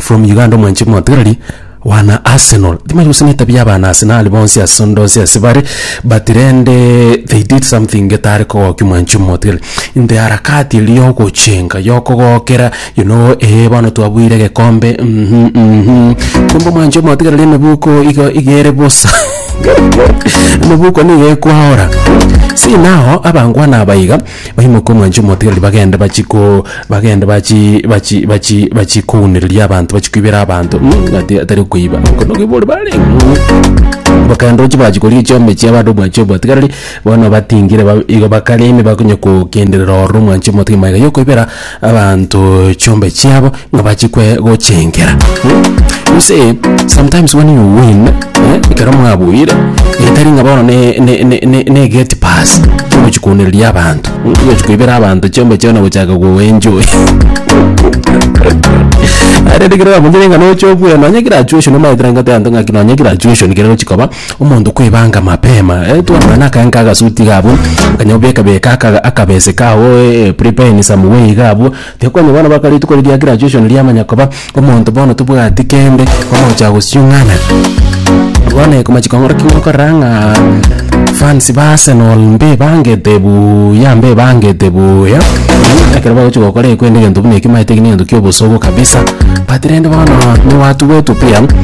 from Uganda omwanchi motigarari wana Arsenal timari gose netabia abana Arsenal bonsi ase onde onsi ase bare but rende they did something getare kogokia omwanchi omotigari in the harakati eria ya ogochenga ya okogokera you know eh bono twabuire egekombe mhm mhm kumbe omwanchi omotigareri emebuko igo iga ere bosa emebuko nigo ekwaora see now abangwana aba iga. Onye mokomwancha omotigareri bagende bachie ko bagende bachie bachie bachie bachie kounereria abanto bachie koibera abanto mm, ati- atari okoiba oko nokobori bare mm. Bakaenda ochi bachia koria echiombe chiabo ande omwancha omotigareri bono batingire ba- igo bakareme bakonya kogenderera ororo omwancha omotigareri magega yokoibera abanto chiombe chiabo ng'a bachikwe gochengera. Hmm? You see, sometimes when you win, eh, ekero mwabuire, etari ng'a bono ne- ne- ne- ne- ne gate pass ogochi kounereria abanto, hmm, ogochi koibera abanto chiombe chiao na gochaka koenjoy. Arende kero bamonye neng'ana oche obwene, nonye graduation omaete nagoteba ng'a nonye graduation kere gochi koba. omonto kwebanga mapema eh, twamana na akaenka agasuti iga abwo okanya obeka beka aka- akabese kao eh, prepare in some way iga abwo tiga kwanya bono baka rituko riria graduation riamanya koba omonto bono tobwati kende omocha gosiung'ana bono eko machiko ng'ora ki ngokorera ng'a fans ba Arsenal mbebangete buya mbebangete buya ekero bagochia gokora ekwende egento buna eki maete eki negento kia obosogo kabisa but rende bono newatugete opia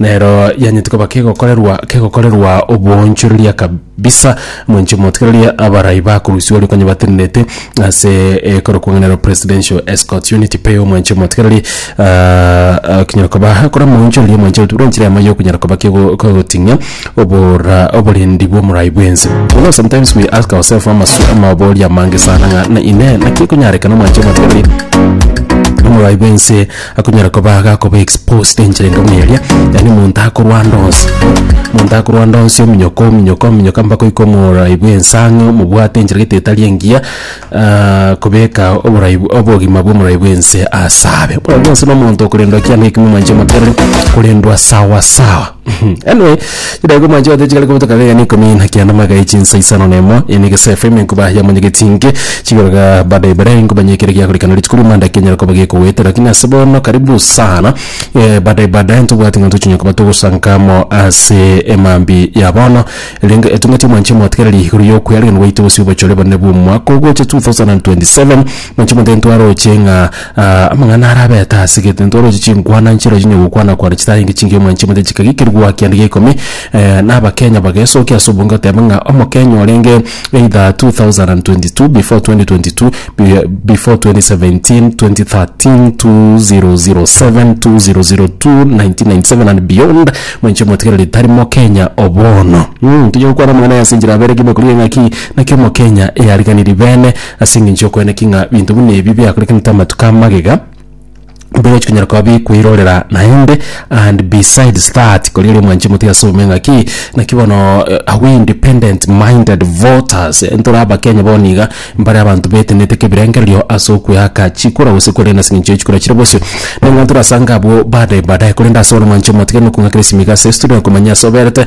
Nero yanyetie koba kegokorerwa kegokorerwa oboonchoreria kabisa, mwenche motigererie abarai bakorusia oria konya batenenete ase ekorokwa ng'a nero Presidential Escorts Unit PEU, mwenche motigererie ah, ah, kinyara koba kore moonchorerie mwenche buna enchera yamo yokunyara koba kego- kegoting'a obora oborendi bw'omorai bwense. You know sometimes we ask ourselves amasu amabori amange sana ng'a na ine naki ekonyarekana mwenche motigererie omorai bwense Akonyara koba agakoba exposed enchera engamu eria, yaani omonto akorwanda onsi, omonto akorwanda onsi ominyoka ominyoka ominyoka mpaka oike omoorai bwa ensang'e omobwate enchera gete etari engiya kobeka oborai bw- obogima bwa omorai bwa ense asabe. Oyo bwensi na omonto okorendwa kiane ekemo mwanche moterere korendwa sawa sawa. Anyway, chidaeka omwancho gete chigare kobutoka iga na ikomi na kianda amagaka ya chinsa isano na emo, eye ne gesafa ime nkoba yamonyegetie inke, chigaruga baadaye baadaye nkoba nye ekero giakorikana riche korwa Monday kianyara koba gekogoeta lakini ase bono karibu sana eh, baadaye baadaye ntobwate ng'a ntochinyara koba togosanka amo ase emambia ya bono, erinde etong'eti omwancho omotigereri igoro ya okoyarigereria gwaito gose obochore bonene bw'omwaka ogocha 2027, mwancho omonto ntwaroche ng'a. Aa, amang'ana ara abete ase egetuntu oroche chinkwana nchire oroche onye gokwana kware chitarenge chingiya omwanchi omonyene chikagekerwa goakianda gia ikomi na abakenya bagesokia ase obonge goteba ng'a omokenya orenge either 2022 before 2022 bire before 2017, 2013, 2007, 2002, 1997 and beyond mwanchi omotigereri tari mokenya o bono. Mmh, tonya gokwana amang'ana aya ase enchera abere gima korigia ng'aki naki omokenya eyariganirie bene Ase engencho y'okoeneki ng'a binto buna ebi biakorekanete amatuko a magega, mbirochi konyara koba bikwirorera naende, and besides that, kori ore omwanche motiga ase obome ng'a ki, naki bono are we independent minded voters, ntore abakenya bono iga mbare abanto betenete kebirengererio ase okoeaka chikura gose korenda ase engencho ye chikura chire bosio, nang'ana torasange abwo baadaye baadaye, korende ase bono omwancho motiga nokong'akera esimiko ase estudio, komanya ase oberete.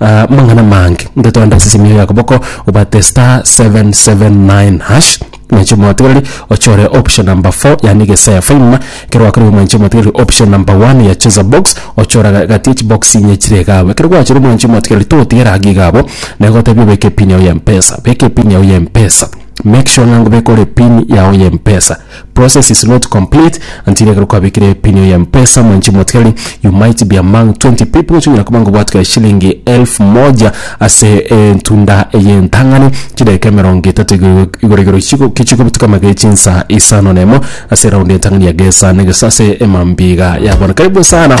Amang'ana amange ntotoende ase simio ya koboko obwate star 779 hash mwanche omotigereri ochore option number 4 yaani gesaya faima ekero gwakorire mwanche omotigereri option number 1 ya cheza box ochore agati ya chibox inye chire iga abwo ekero gwachire mwanchi omotigereri togotigera iga iga abwo nagotebia obeke pin yago ya mpesa beka epin yago ya mpesa make sure ng'a ngobeka ore pin yago ya mpesa. Process is not complete until ekero kwabekire epini eye mpesa mwanche motigari you might be among 20 people chonyara koba ngobwatwe eshilingi elfu moja ase entunda eye entang'ani chidakika emerongo etato igoro igoro igoro chigo kichigobutuka amagere echinsa isano na emo ase eround entang'ani ya gesa na gesa ase emambia iga yabona karibu sana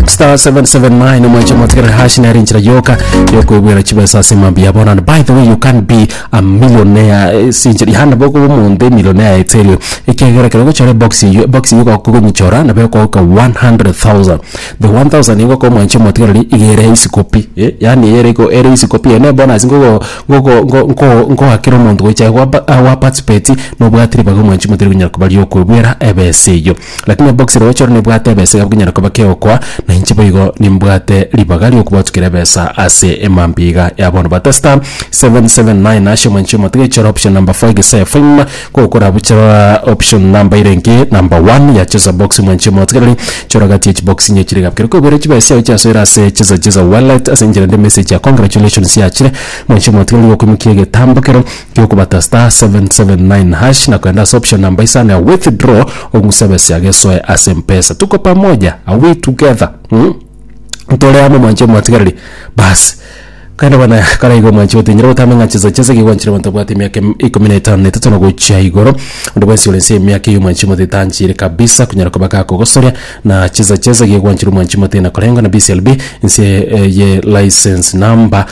star 779 omwanche motigari hash nere enchera yoka yokoebwera chibesa ase emambia yabona and by the way you can be amilionea sinchera yaani nabo okoba omonto emilionea etserio ekiagera ekero ogochora ebox eyio ebox eyio ogoka ogonyichora nabo ekogoka 100000 the 1000 nigo okoba omwancha omotigareri iga ere isiko pi eh yaani ere iko ere isiko pi eye na ebonus ngogo ngogo ngo nko nkoakera omonto gocha aye gwapa ah gwaparticipeti nobwatiri baga omwanchi omotigareri gonyara koba riakoebwera ebesa eyio. Lakini obokisi roche oro nebwate ebesa iga bokonyara koba keokwa, na inche boigo nimbwate ribaga ri'okobatukera ebesa ase emambia iga y'abono bata star 779 hasha omwancho omotige chora option number 4 egesae fim gokora bucha rora option number erenge number 1 ya cheza box omwancho omotigereri chora gati ya chibokisi inye chire gabikere kobera chibesa chiao chiasoera ase cheza cheza wallet ase enchera ende emessage ya congratulations yachire omwancho omotigereri gokoimokia egetambo kero. Gi'okobata star seven seven nine hash na koenda ase option namba isano ya withdraw ong'use ebesa yago esoe ase mpesa tuko pamoja are we together mm? ntore amo mwanche omwatigareri basi kaende bana karaiga omwanche otenyere gotama ng'a chesa chesa iga gwanchire abanto babwate emiaka em- ikomi na etano na etato na gochia igoro onde bwensi ore nse y'emiaka eyo omwanchi omote tanchire kabisa konyara koba gakogosoria na chesa chesa iga gwanchire omwanchi omote na korenga na BCLB nse eh, ye license number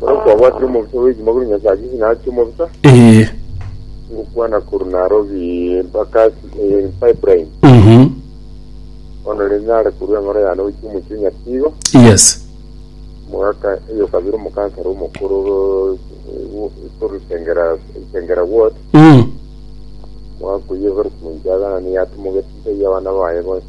Bono nkwabwatire omobisa bw'ekimo korwa Nyasae ase chinsa achio omobisa, Ee. ngokwana korwa Nairobi mpaka ase eh, pipeline. Mhm. Bono rende nare korwa eng'oro yane gochia omochie Nyatigo, Yes. omogaka eyo kabere omokansara omokoro eh, wo- korwa Isengera, Isengera ward, Mm. omogaka oyio Evarist Moijaga, nani yatomogete inse y'abana baye bonsi.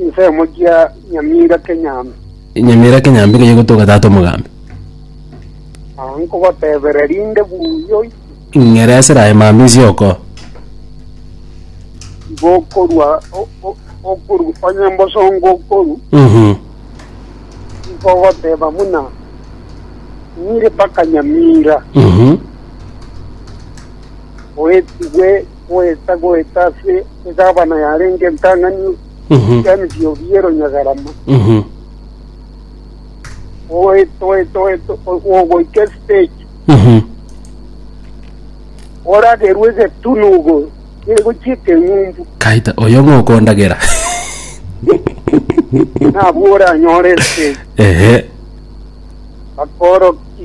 Ensemo gia Nyamira Kenyambe. Nyamira Kenyambe keye gotoka tata omogambi. Ah, nkogotebera rinde buya oiche. Ng'ere ase raye mambia isioko. Igo okorwa o- o- okoru onye mbosongo okoru Mhm. nkogoteba buna nyire mpaka Nyamira. Mhm. oetigwe goeta goeta ase egabana yarenge entang'ani y'emechie oria ye Runyagarama, oete oete oete ogoika estage oragerwe egetunu igoro egochia ekeng'umbu kaita oyo ng'o okondagera nabwo oranyore estage ehe bakoroki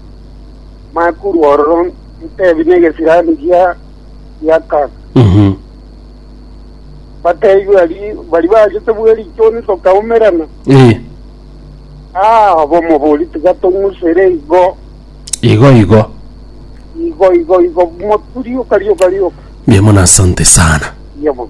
makuru ororo ntebi negesirani gia gia Kang. Mhm. Batebi bari bari bachete bwe richoni tokaumerana. Eh, Ah, abomobori tiga tong'usere igo. igo igo. Igo igo igo moturi okarioka rioka. Mia mono asante sana. Yebo.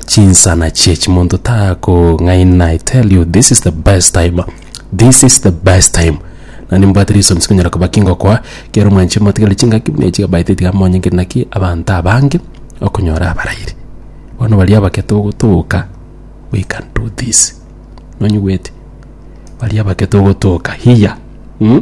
chinsana chie chimonto takong'aina I tell you this is the best time this is the best time nani mbwate reasons konyara koba kingokoa kero mwanche motigere chingaki buna echi abaete tiga monyengeri naki abanto abange okonyora abarairi bono baria abake togotoka we can do this nonyigwete baria abake togotoka hiya mm?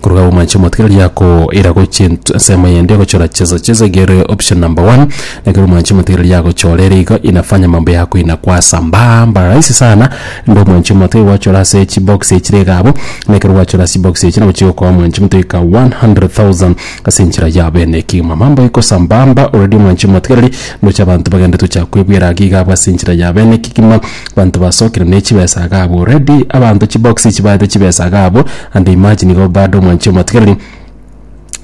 Korwa agwo mwanche omotweri akoira gochia ent- ensemo eyende gochora chesa. Chesa ekiya ere option number one, ekero mwanchi omotweri agochora ere igo inafanya mambo yako inakua sambaa mba rahisi sana, inde omwanchi omotweri gwachora ase chibox echire iga abwo, na ekero gwachora ase chibox echi nabo chigokoa omwanchi omotweri ka 100,000 ase enchera ya bene ekegima. Mambo iko sambaa mba already omwanchi omotweri ndoche abanto bagende tocha kwebwera iga iga abwo ase enchera ya bene ekegima, abanto basokire ne chibesa iga abwo already, abanto chibox echi baete chibesa iga abwo. And imagine igo bado mwanche omatigereri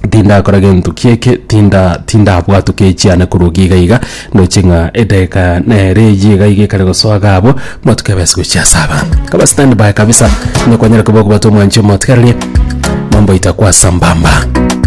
tindakora gento kieke tinda tindabwatwa ke chiane korwa ogie iga iga ndoche ng'a edageka nere eyio iga iga ekare gosoa iga abwo omatuko ebase gochia ase abanto kaba stand by kabisa nokwanyare koba okobatwa mwanche omwatigereri mambo aito akwa sambamba.